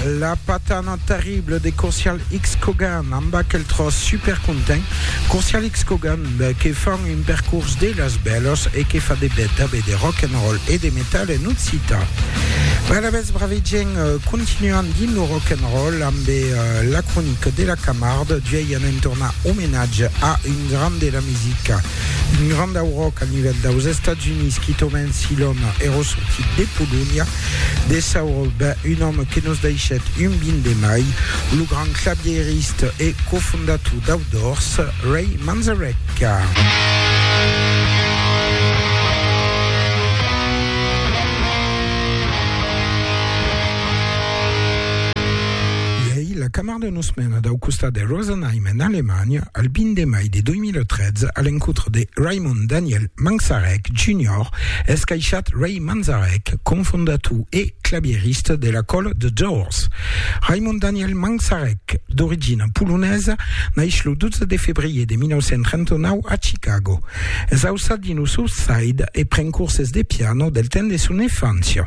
La patana terrible de Courcial X Cogan amb aquel tros super content Courcial X Cogan que fan un percurs de las bèlas e que fa de bèth a bèth de rock and roll e de metal en occitan. Bèla bèth brave gent continuan dins lo rock and roll amb la cronica de la Camarde d'uèi anem tornar omenatge a un grand de la musica Un grand dauroc a nivèl daus Estats Units qui tomèn si l'òme èró sortit de Polonha. De sauro, ben, un òme que nos daishèt un bin de mai, lo grand clavièriste e cofondator dau Doors, Ray Manzarek. Pendent una setmana dau costat de Rosenheim en Alemanha, el 20 de mai de 2013, a l'encontre de Raymond Daniel Manzarek Junior, es caishat Ray Manzarek, cofondator e clavierista de la còla The Doors. Raymond Daniel Manzarek, d'origina polonesa, naix lo 12 de febrier de 1939 a Chicago. Es ausat dins lo South Side e pren corses de piano del temps de son enfància.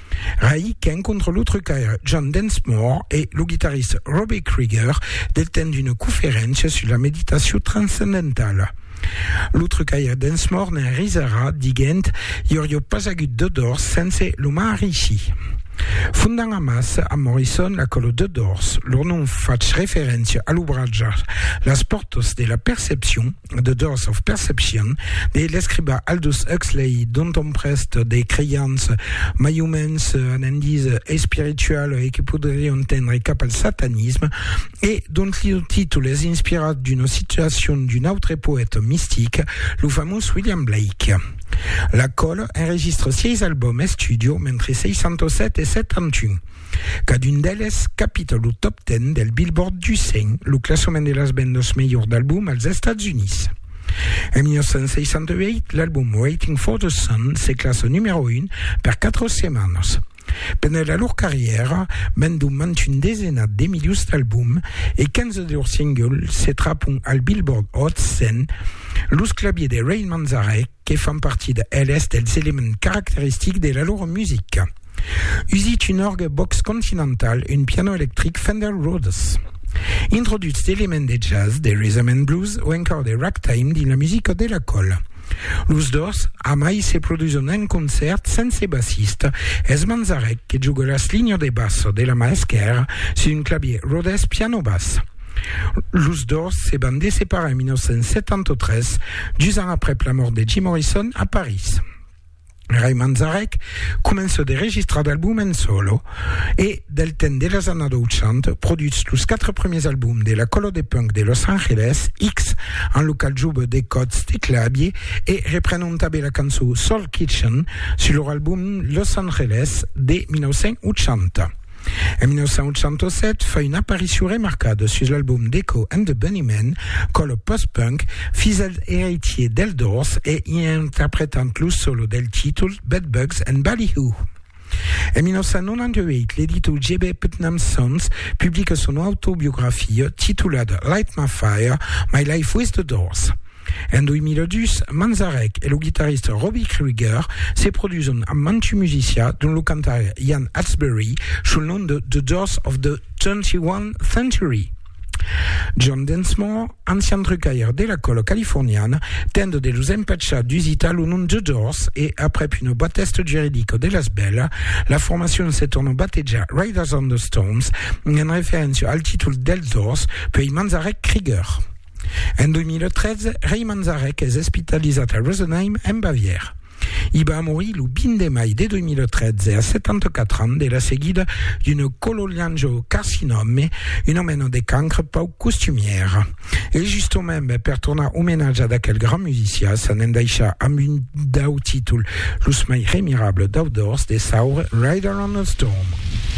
Rai qu'en contra lo trucaire John Densmore e lo guitarrist Robbie Krieger detenent una conferéncia sus la meditacion transcendentala. Lo trucaire Densmore ne'n risarà diguent I aurió pas agut de Doors sense lo Maharishi. Fondant amassa amb Morrison la còlo The Doors, lor nom fach referéncia a l'obratge Las pòrtas de la percepcion, The Doors of Perception de l'escriba Aldous Huxley, dont on prest de creians mai o mens anandis espiritual e que podrion tendre cap al satanisme, e dont lo títol es inspirat d'una situacion d'un autre poète mistic, lo famós William Blake. La còl enregistra 6 albòm estudio mentre 67 e 71. Cadun d'eles capita lo Top Ten del Billboard du 100, lo classament de las vendas melhors d'album als Estats Units. En 1968, l'album Waiting for the Sun se classa numèro 1 per 4 setmanas. Pendent la lor carrièra, vendon mens un desenat de milions d'albums e 15 de lors singles se trapon al Billboard Hot 100, los claviers de Rain Manzarek, que fan partida eles dels elements caracteristics de la lor musica. Usitge un orgue Vox Continental, un piano electric Fender Rhodes. Introduch d'elements de jazz, de rhythm and blues o encòr de ragtime dins la musica de la còla. Los dos amai se produson en concèrt sense bassista, es Manzarek que juga las linhas de bassa de la mà esquèrra sus un clavier Rhodes piano-bass. Los dos se van de separar en 1973, dus ans aprèp la mòrt de Jim Morrison a París. Ray Manzarek comença de registrar d'albums en solo e, del temps de las annadas 80, produtz los quatre premiers albums de la còlo de punk de Los Angeles, X, en lo qual joba de còds de clavier e repren un tabè la cançó Soul Kitchen sus lor album Los Angeles de 1980. En 1907 fa una aparicion remarcada sus l'album d'Echo and the Bunnymen, quand lo post-punk fisèl eiretier dels Doors e i interpretant lo solo del títol Bedbugs and Ballyhoo. En 1998, l'editor J.B. Putnam Sons publica son autobiografia titulada Light My Fire, My Life With the Doors. En 2002, Manzarek e lo guitarrista Robbie Krieger se produson amb mantu musicià, dont lo cantaire Ian Astbury, sul nom de The Doors of the Twenty-One Century. John Densmore, ancian trucaire de la còla californiana, tendent de los empachar d'usitar lo nom The Doors e, aprèp una batèsta juridica de las bèla, la formacion se torna batejar Riders on the Storms, en referéncia al títol dels Doors, puèi Manzarek-Krieger. En 2013, Rei Manzarek es espitalizat a Rosenheim, en Bavièra. I va morir lo 20 de mai de 2013 a 74 ans de la seguida d'un cololiangiocarcinòme, una mena de cancre pauc costumièra. E justament, per tornar omenatjar d'aquel grand musicià, s'anèm daishar amb un dau títol los mai remirables dau dors de saure, Rider on a Storm.